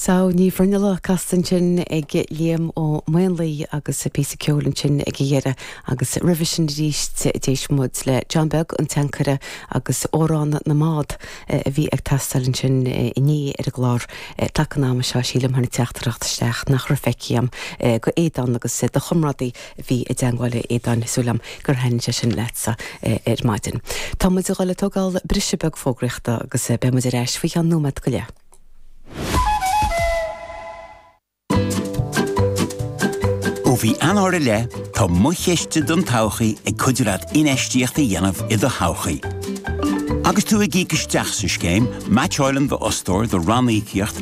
Sadhbh Ní Bhruinnealla casta ansin ag Liam Ó Maonlaí agus píosa ceoil ansin ag a dheireadh agus roimhe sin arís d'éist muid le John Beag, An tAncaire agus Amhrán na mBád a bhí ag teastáil ansin inné ar an gclár taca an ama seo, sílim, tháinig teachtaireacht isteach nach raibh feicthe agam go Aodán agus do chomrádaí. a bhí i dteangmháil linn Aodán, súil agam gur thaithin sé sin leatsa ar maidin. Tá muid ag dul ag tógáil briseadh beag fógraíochta agus beidh muid ar ais faoi cheann nóiméad go leith. Ó mhí Eanáir i leith, tá Mo Chiste don Todhchaí ag cuidiú leat infheistíocht a dhéanamh i do thodhchaí. Agus tú ag íoc isteach sa scéim, meaitseáileann d'fhostóir do ranníocaíocht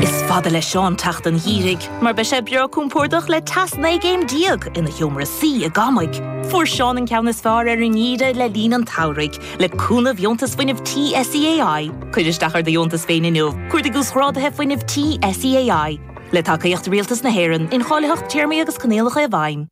Is fada le Seán teacht an Gheimhridh mar beidh sé breá compordach le teas 19 gcéim ina sheomra suí i gCamaigh. Fuair Seán an ceann is fearr ar an nGeimhreadh le linn an tsamhraidh, le cúnamh Dheontas Fuinnimh Tí SEAI. Cuir isteach ar do dheontas féin inniu, cuardaigh Uasghrádaithe Fuinnimh Tí SEAI. Le tacaíocht Rialtas na hÉireann, incháilitheacht Téarmaí agus Coinníollacha i bhfeidhm.